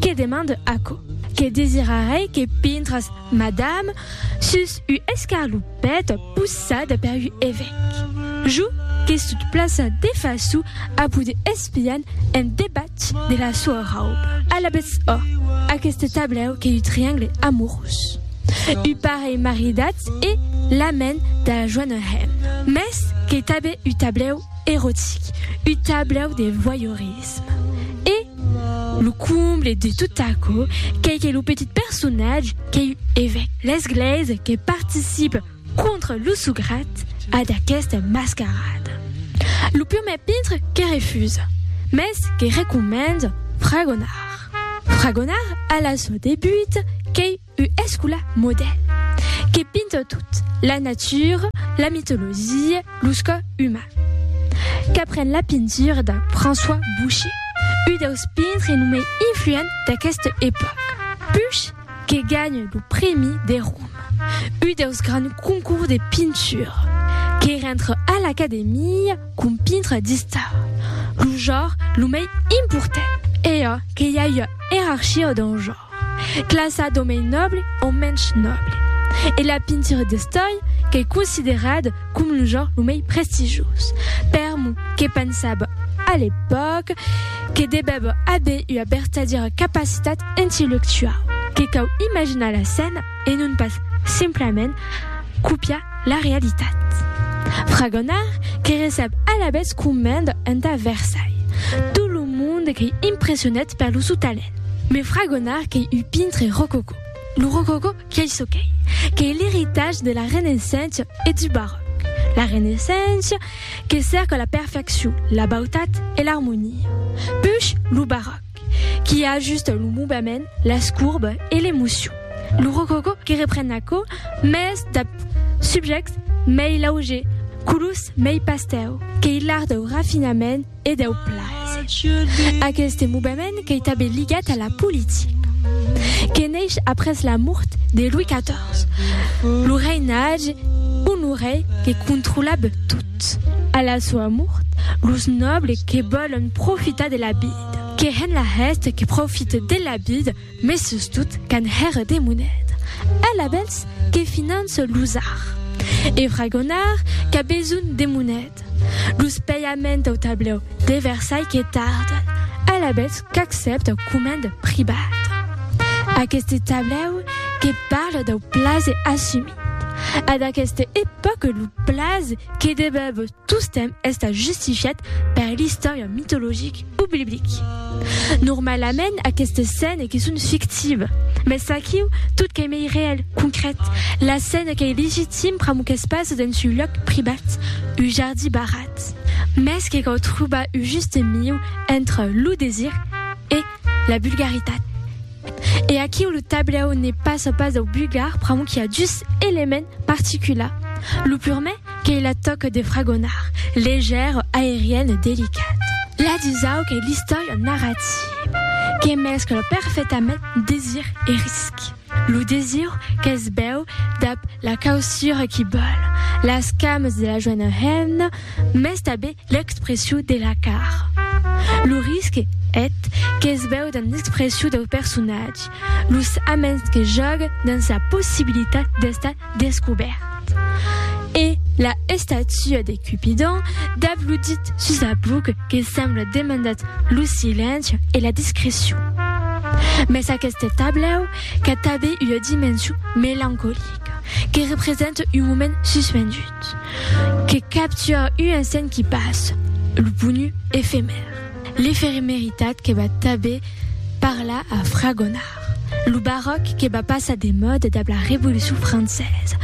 Que demande aquò? Que desirarei que pintras madame sus u escarlupèt possada per u evèc. Jo que sut plaça de façu a poder espian en debatz de la soa rauba. Alabètz ò, aqueste tablèu qu'ei u triangle amorós. U parelh maridatz e l'amèn da la joana hemna. Mès qu'ei tabè u tablèu erotic, u tablèu de voyeurisme. E. Lo comble de tot aquò qu'ei que lo petit personatge qu'ei evèc l'esglèis que participe contra lo sograt a d'aquesta mascarada. Lo purmèr pintre que refusa, mès que recomenda fragonar. Fragonar a la sò debut qu'ei U escola modèl que pinta tot, la natura, la mitologia, los cò uman. Qu'apren la pintura de François Boucher, u deus pintre lo mei influent d'aqueste epòca. Puch que ganha lo prèmi de Roma, u deus grands concours de pintura, que rentre a l'Academia com pintre d'istar, lo jor lo mei important. E a que i a ua erarchia dau jor. Classa d'omei nòble o mensh nòble. E la pintura d'estòia qu'ei considerada com lo genre lo mei prestigioz. Per mo, que pensava a l'epòca que devèva aver ua vertadièra capacitat intellectuau, que cau imaginar la scèna e non pas simplament copiar la realitat. Fragonard que recep alavetz comenda entà Versailles tot lo monde qu'ei impressionat per lo sou talent. Me fragonar qu'ei un pintre rococó. Lo rococó qu'ei çò qu'ei, qu'ei l'eritatge de la Renaissença e du Barròc. La Renaissença que cèrca la perfeccion, la bautat e l'armonia. Push lo Barròc qui ajusta lo movement, las courbes e l'emocion. Lo rococó que repren aquò, mès dab subjèctes mei lauger, colors mei pastèu, qu'ei l'art dau rafinament, e deu plaser. Aqueste movement qu'ei tanben ligat a la politica. Que neish après la mort de Louis XIV, lo reinatge Honoré que controlab tot. A la soa mort, los nobles que vòlon profitar de la vida, que hèn la hèste que profite de la vida, Mes sustot qu'an hèr de moneda. Eth labèls que finance los ar. E fragonar qu'a besonh de moneda. Los pèiaments au tablèu de Versailh que tarden. Eth labèls qu'accèpta au comènd privat. Aqueste tablèu que parle dau plaze assumit. A d'aqueste epòca lo plaze que debèb. Tostemp estat justifiat per l'istòria mitologic o biblic. Normalament aquestes scènes que son fictives, mes aquiu tot qu'ei mei reèl, concret, la scène qu'ei legitim pr'amor qu'es pas dens un lòc privat, un jardí barrat. Mes que cau trobar un juste mieu entre lo desir e la vulgaritat. E aquiu lo tablèu ne passa pas dau bugar pr'amor qu'i a dus elements particulars. Lo purmè qu'ei la tòca de fragonar, leger, aerian e delicat. La dusau qu'ei l'istòria narrativa, que mescla perfectament desir e risc. Lo desir qu'es bèu dab la causura qu'i bòl, las camas de la joena hemna, Mès tanben l'expressiu de la car. Lo risque et que's veu dans l'expressiu dau personatge, los aments que jòga dans sa possibilitat d'estar descobèrt. E la estatua de Cupidon dab lo dit sus la buc que sembla demandat lo silenci e la discrecion. Mès aqueste tablèu qu'a tanben ua dimension melancolica, que representa un moment suspendut. Que capture un insent qui passe, lo ponu efemèr, l'efemeritat que va tanben parlar a Fragonard, lo baròc que va passar de mòda dab la Revolucion Francesa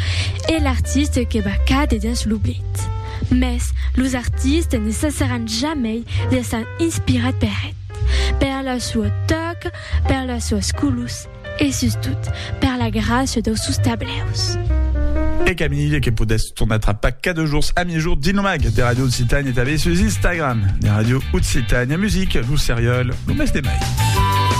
e l'artiste que va càder dens l'oblit. Mès los artistes ne cessaràn jamei d'èsser inspirats per eth, per la sua tòca, per las suas colors, E sustot, per la gràcia dau sus tableus. E Camille, que podètz tornar trapar cada jorns a miègjorn dins lo mag de Ràdio Occitània e tanben sus Instagram de Ràdio Occitània Music, lo serial, lo mes de mai.